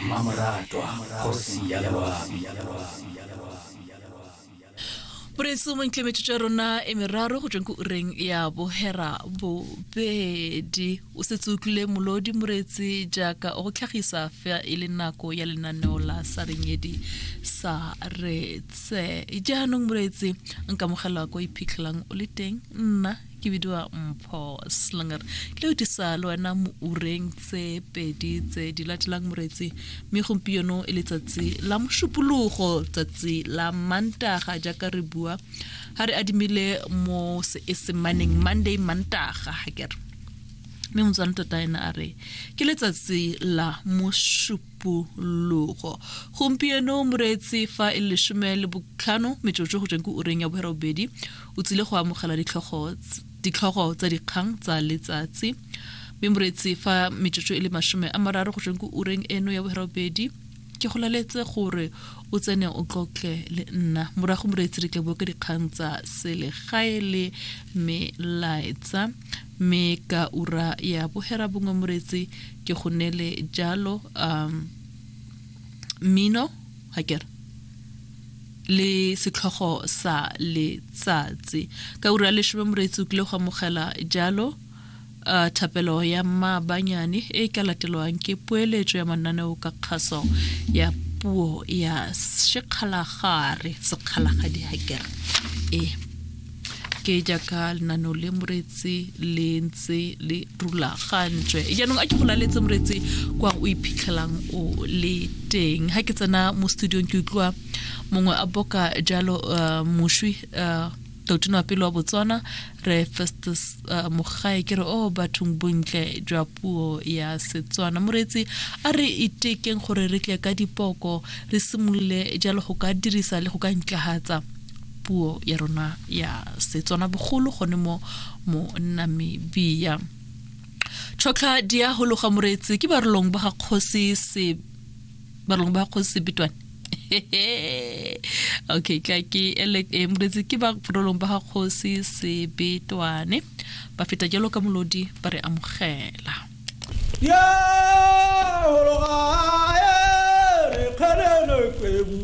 Mmamoratwa kgosi ya loabi Boreetsi mo ntleng metsotso ya rona e meraro go tsweng ko ureng ya bohera bobedi o setse utlwile molodi moreetsi jaaka o go tlhagisa fa e le nako ya lenaneo la sarenyedi sa retse jaanong moreetsi nkamogela ko iphitlhelang o le teng nna ke bidiwa mpho slinger le o disa le wena mo ureng tse pedi tse di latelang moretsi mme gompieno e letsatsi la mošupologo tsatsi la mantaga jaaka re bua ga re adimile mo seesemaneng monday mantaga ga kere mme motswana tota ena a re ke letsatsi la mošup pologo gompieno moreetsi fa e lesome le botlhano metsotso go tsweng ko ureng ya bogera bobedi o tsile go amogela ditlhogo tsa dikgang tsa letsatsi mme moreetsi fa metsotso e le masome a mararo go tsweng ko ureng eno ya bogera bobedi ke go laletse gore o tsene o tlotle le nna morago moreetsi re tle boke dikgang tsa selegae le melaetsa Mme ka ura ya boherabongwe moretsi ke go nele jalo um mmino ga kere le setlhogo sa letsatsi ka ura leshome moretsi o kile go amogela jalo uh, thapelo ya mmabanyane e ka latelwang ke poeletso ya mananeo ka kgaso ya puo ya sekgalagare sekgalagadi hakere e ke jaaka lenano le moretsi le ntse le rulagantswe jaanong a ke go laletse moretsi kwa o iphitlhelang o le teng ga ke tsena mo studiong ke utlwa mongwe a boka jalo uh, moswi uh, totona pele wa botswana re festus uh, mogae ke re o oh, bathong bontle jwa puo ya setswana moreetsi a re itekeng gore re tle ka dipoko re simolole jalo go ka dirisa le go ka ntlagatsa puo ya rona ya setswana bogolo gone mo mo nna mebia tlhotlha di a hologa moreetsi ke barolong ba ga kgosi se barolong ba ga kgosi sebetwane okay ka ke ele e eh, moreetsi ke ba barolong ba ga kgosi sebetwane ba feta jalo ka molodi ba re amogela yeah,